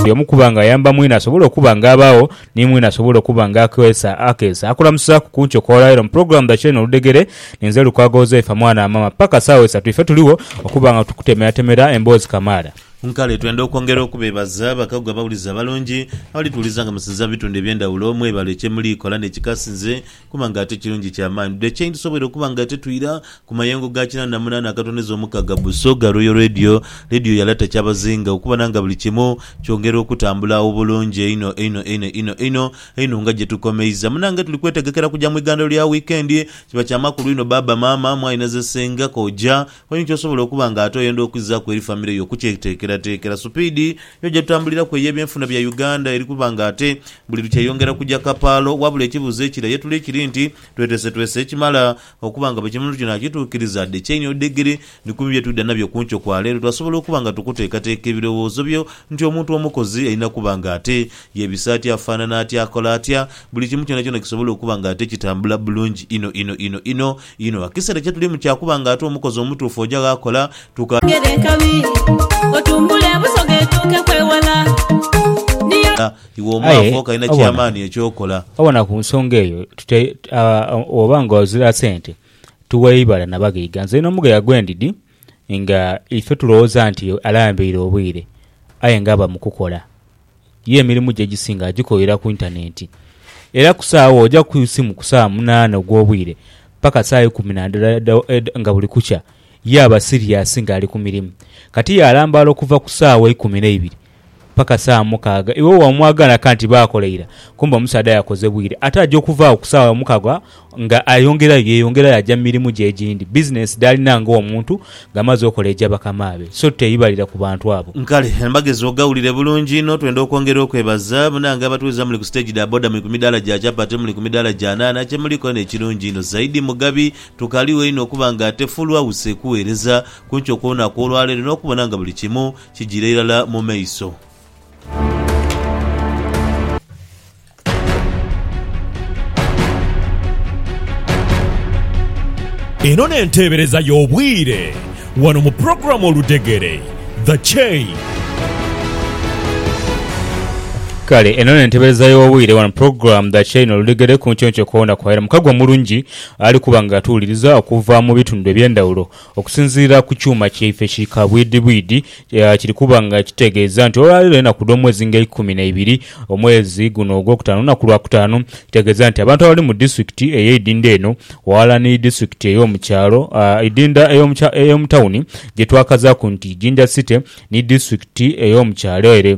Buli omu kuba nga ayamba mwine asobole okuba nga abaagho ni mwine asobole okuba nga akeesa akeesa. Akulamusaaku ku nkyo kw'olwaira mu pulogulaamu dha Kyeeno Oludhegere. Ninze Lukwago Uzaifa mwana wa maama. Paka saawa isatu ife tuligho okuba nga tukutemeratemera emboozi kamaala. Nkale twenda okwongera okubeebaza bakagu abawulize abalungi abalituwuliza nga musinza mu bitundu eby'endhawulo. Mwebale kye muli kola n'ekikasinze Kuba nga ate kirungi kya maani dhu ekye tusobweire okuba nga ate twira ku mayengo ga kinaana na munaana agatondeza omukaga bu Soga Royal Radio, Radio ya Lata Kyabazinga okubona nga buli kimu kyongera okutambula obulungi einho einho einho einho einho einho nga gye tukomeiza. Munange tuli kwetegekera kuja mu igandhiro lya wiikendi. Kiba kya makulu inho baaba, maama, mwaine ze senga, kojja, Wenhi ky'osobola okuba nga ate oyenda okwizaaku eri famire yo okukyeteekerateekera. Supiidi yo gye tutambuliraku ey'ebyenfuna bya Uganda eri kuba nga ate buli lukya eyongera kuja kapaalo. Wabula ekibuuzo ekira ye tuli kiri nti, twetesetwese ekimala okuba nga buli kimu tuli naakituukiriza? Dhe chain or digiri ni kumu bye twidha nabyo ku nkyo kwa leero. Twasobola okuba nga tukuteekateeka ebirowoozo byo nti omuntu omukozi alina kuba nga ate yeebisa atya, afaanana atya, akola atya, buli kimu kyonakyona kisobole okuba nga ate kitambula bulungi inho inho inho inho. Inho ekiseera kye tulimu kya kuba nga ate omukozi omutuufu oja gh'akola, tuka. Gere enkabi, otumbule ebusoga etuuke kwewala. Niyo. Iwe omwavu Aye, okalina obona, ky'amaani eky'okola. obona ku nsonga eyo tute, a, oba nga ozira sente, tuwa eibala na baghaiga. Nze n'omugaiga gwe ndidi, nga ife tulowooza nti alambaire obwire aye nga aba mu kukola. Ye emirimu gye egisinga agikolera ku intanenti. Era ku saagho oja ku isimu ku saawa munaana ogw'obwire paka saawa ikumi na ndala edha nga buli kukya ye aba siriyasi nga ali ku mirimu. Kati ye alambaala okuva ku saawa ikumi n'eibiri Paka saawa mukaaga iwe wamwagala kanti baakola ira kumbe omusaadha yakoze bwire ate aja okuva agho ku saawa mukaaga nga ayongerayo yeyongerayo aja mu mirimu gye egindi. Bizinensi dh'alina nga omuntu nga amaze okola eja bakamaabe so teyibalira ku bantu abo. Kale mbagezi ogawulire bulungi inho. Twenda okwongera okwebaza munange abatuweza muli ku stage dha boda muli ku midaala gya chapati muli ku midaala gya nhaanha kyemuliku eno ekirungi inho zaidi mugabi tukaligho inho okuba nga ate full house ekuweereza kunkyo kw'olunaku olwaleero n'okubona nga buli kimu Kijira irala mu maiso. Eno n'enteebereza y'obwire wano mu pulogulaamu Oludegere, The Chain. Kale eno nentebereza y'obwire wano program the chain oludegere ku nkyonkyoko na kwaira mukagwa mulungi ali kuba nga atuwuliriza okuva mu bitundu ebyendawulo Okusinziira ku kyuma kyaife ki kabwidhibwidhi, kiri kuba nga kitegeeza nti olwaleero enaku dh'omwezi nga eikumi na ibiri omwezi guno ogwokutaano lunaku lwakutaano, kitegeeza nti abantu abali mu disitulikiti ey'eidhindha eno ghalala ni disitulikiti ey'omu kyalo, eidhindha ey'omu tawuni gyetwakazaaku nti Jinja City ni disitulikiti ey'omu kyalo ere.